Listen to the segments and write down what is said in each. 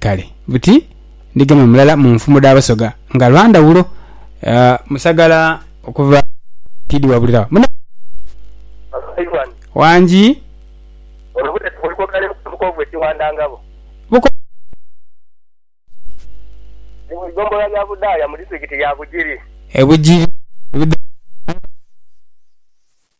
Kale buti ndigema mulala mu nfumo dha Basoga nga lwa ndhawulo. Musagala okuva Kaitidi wabulira wa munange wangi. E Bugiri.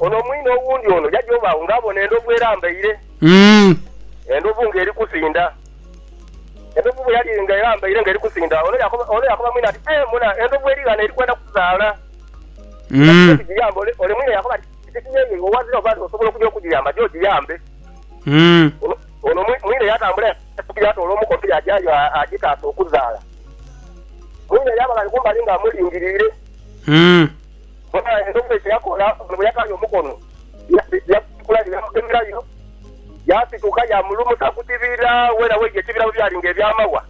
Ono mwine owundi ono yaja oba agho nga abona endhovu erambaire. Endhovu nga eri kusinda. Endhovu bwe yali nga erambaire nga eri kusinda, ono yakoba ono yakoba mwine ati, Aye muna, endhovu eri ghano eri kwenda kuzaala. Kiki ekigiyamba? Ole ole mwine yakoba ati, Titi ye ye iwe owazira oba nti osobola okuja okugiyamba, ja ogiyambe. Ono ono mwi mwine yatambula yatuuka yatoola omukono yajayo a agitaase okuzaala. Mwine yaba ghale kumbali nga amulingiriire. Bona endhogoyi kye yakola ono bwe yakaaya omukono, yagutikula ni yamugemerayo, yaasituka yaamulumusa ku kibira weena weidhi ekibira bwe byali ng'eby'amawa.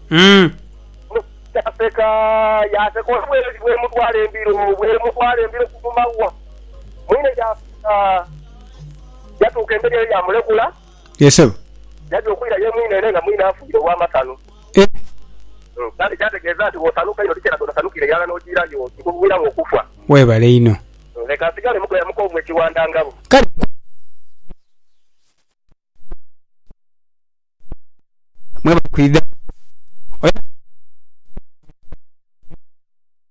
Ono yaaseka, yaaseka ono bweli bw'emutwala embiro, bw'emutwala embiro ku mawa. Mwine yaaseka, yatuuka emberi eyo yaamulekula. Ye sebo. Yaja okwira ye mwine ere nga mwine afiire olw'amasanu. Eh! Kale kyategeeza nti bw'osanuka einho tikyelaga otasanukire irala n'ojiira yo kikuviiramu okufa. Webale inho. Leka nsigale mugoya mukoomu ekiwanda ngabo. Kale mukooye mwebale kwidha. Oyo asinga okuba omusaadha.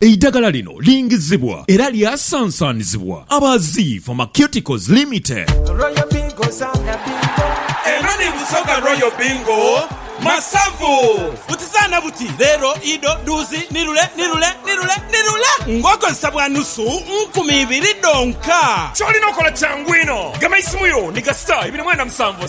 Eidagala lino lingizibwa era lyasansanizibwa aba Zii Pharmaceuticals Limited. Royal Bingo zaana bingo. Eno ni Busoga Royal Bingo masavu. Buti zaana buti, leero, ido, dhuuzi, ni lule, ni lule, ni lule, ni lule ng'okozesa bwa nusu nkumi ibiri dhonka. Ky'olina okola kyangu inho. Gema eisimu yo ni kasita ibiri mwenda musanvu.